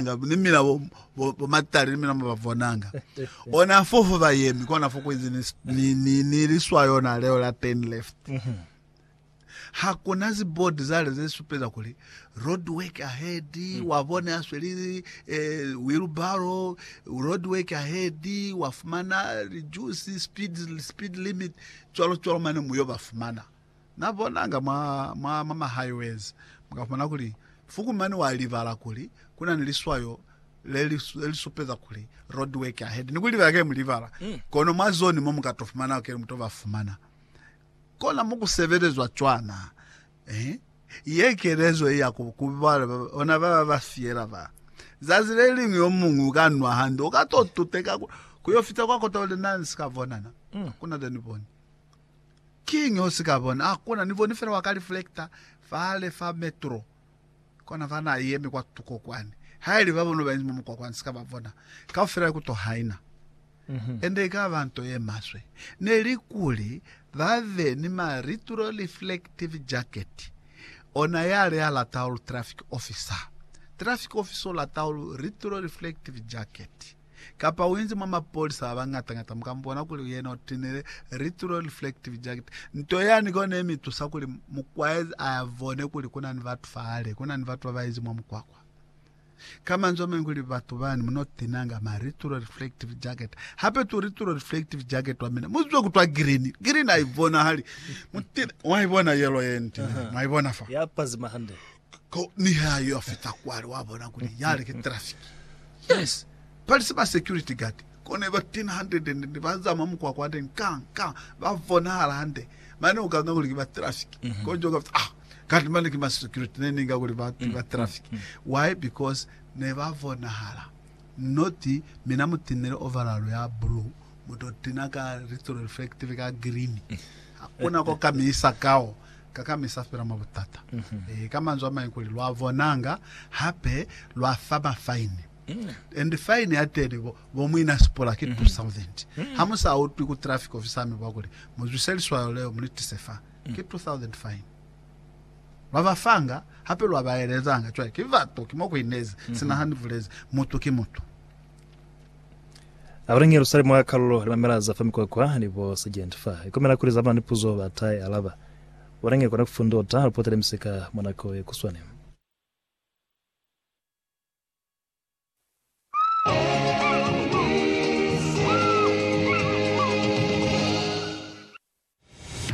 ni mina bo, bo, bo matali ni mina mo ba bonanga ona fo fo ba yemi kona fo kuizi ni, ni, ni, ni liswa yona leo la turn left mhm. ha kuna zibodi zale ze supeza kuli road work ahead mm. wa bone a sweli eh, wheelbarrow road work ahead wa fumana reduce speed, speed limit tswalo tswalo mane muyo ba fumana Na bonanga mwa, mwa, mwa ma highways, mu ka fumana kuli Fukumani wa libala kuli ku na ni liswayo le li, le li supeza kuli road work ahead. Ni ku libala kili mu libala. Kono mwa zone mo mu ka to fumana kili mu to ba fumana. Kona mo ku sebelezwa cwana. Eh? Ye kelezo ye ya ku, ku ba, bona ba ba ba fiela ba. Zazi le liñwi yo muñwi u ka nwa hande, u ka to tuteka ku, ku yo fita kwa kota uli, Na ni si ka bona na. Hakuna le ni boni. Kiñi o si ka bona? A ku na ni boni fela wa ka reflector fale fa metro kona fa na yemi kwa tuko kwani. Haili ba bona ba inzi mwa mukwakwa, ni si ka ba bona. Kaufela ya ku to haina. And i ka ba nto ye maswe ne li kuli ba be ni ma retroreflective jacket. Ona yale ya lata ulu traffic officer. Traffic officer u lata ulu retroreflective jacket. Kapa uinzi mwa mapolisa abangatangata mukambona kuli yena utinile retro reflective jacket. Nto yani kona imitusa kuli mukwaezi ayabone kuli kunani batu fahali, kunani batu babainzi mwa mukwakwa. Ka manzwi amañwi kuli batu bani munotinanga ma retro reflective jacket. Hape tu retro reflective jacket wamina muzwe kutwa green. Green aibonahali. Mutine, mwaibona yellow yenitinile? Mwaibona fa? Yapazima hande. Ko niha yo a fita kwale wa bona kuli yale ki traffic. Yes, bali si ba security guard ko ne ba tena hande then ne ba zama mukwakwa hande nkang nkang ba bonahala hande mane u kanga kuli ki ba traffic mm -hmm. ko njo ka ah kanti mane ki ma security ne ninga kuli ba ki ba traffic mm -hmm. why because ne ba bonahala not mina mutinele overall ya blue mutotina ka retro reflective ka green hakuna ko kamisa kao Ka kamisa fela mwa butata. Ee, ka manzwi a mañi kuli, lwa bonanga, hape lwa fa ba fine. And fine ya teni bo, bo muina sipola ki 2000. Ha mu sa utwi ku traffic officer ami bwa kuli, Mu zwise liswayo leo, mu li tise fa. Ki 2000 fine. Lwa ba fanga, hape lwa ba elezanga. Cwale, ki bato, ki mo ku inezi. Sina ha ni bulezi, mutu ki mutu. Abona nge lusali mwa kalulo lamela za fa mikwakwa ni bo sergeant fa. Ikomela kuli zabana ni puzo ba ta i alaba. Bona nge kona kufundota lupota le misika mwa nako ye kuswane.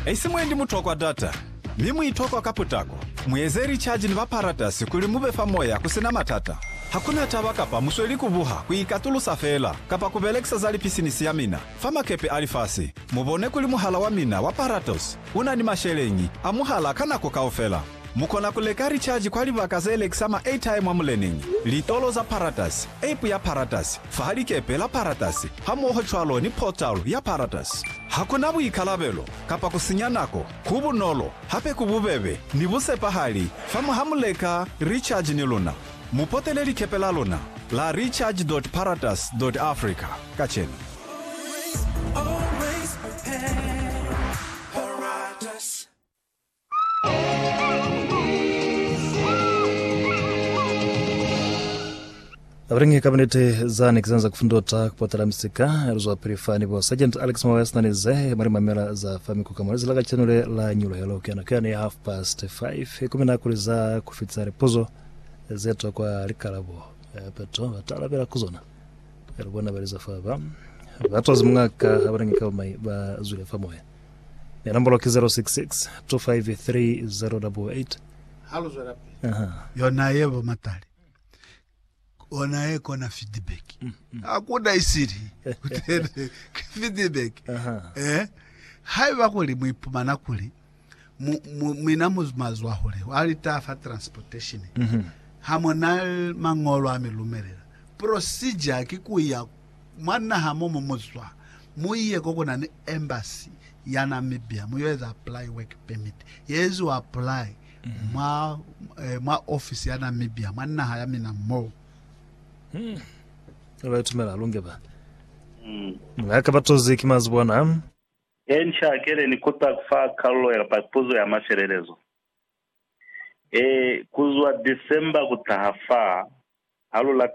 Haisi mwendi mutokwa data, mi muitokwa ka putako. Mueze lichaji ni baparatasi kuli mube fa moya kusina matata. Hakuna taba kapa musweli kubuha, kuikatulusa feela, kapa kubelekisa za lipisinisi ya mina fa makepe a lifasi, mubone kuli muhala wa mina wa Paratos unani masheleñi a muhala ka nako kaufela. Mu kona ku leka lichaji kwa libaka ze lekisa ma-airtime mwa muleneñi, litolo za Paratus, app ya Paratus, fa likepe la Paratus, hamoho cwalo ni portal ya Paratus. Ha ku na buikalabelo kapa ku sinya nako, ku bunolo, hape ku bubebe ni busepahali fa mwa ha mu leka lichaji ni luna. Mu potele likepe la luna la recharge.paratus.africa kacenu. Abalingi kabinete zani kisanza kufundota kupotela misika eluzwa pili fani bo Sergeant Alex Mawaya sinani ze mali mamela za fami ku kamwalezi la kacheno le la nyula yalo kiana kiana ya half past 5 kumi na kuli za kufitsa lipuzo ze to kwa likalabo eh, peto batala bela kuzona elubona baliza fa ba batwazi mungaka abalingi kabamai ba zwile fa moya Ya nombolo ki 066 253 088. Ha lu zwelapili. Aha. Yona ye bo matali. Ona ye kona feedback. Mm, mm. Hakuna isili. Kutele feedback. Aha. Eh. Haiba kuli mu ipumana kuli mu, mu, mina mu mazwa hule wa lita fa transportation. Mm -hmm. Ha mona mangolo a mi lumelela. Procedure ki ku ya Mwa naha mo mu zwa, mu ye ko ku na ni embassy ya Namibia mu yo eza apply work permit. Ye eziwa apply mwa, eh, mwa office ya Namibia mwa naha ya mina mo. Ba ba itumela lunge ba. Nga ka ba tozi ki mazi bona. He nca kele ni kuta ku fa kalulo ya pa puzo ya mafelelezo. E, ku zwa December ku taha fa, ha lu late.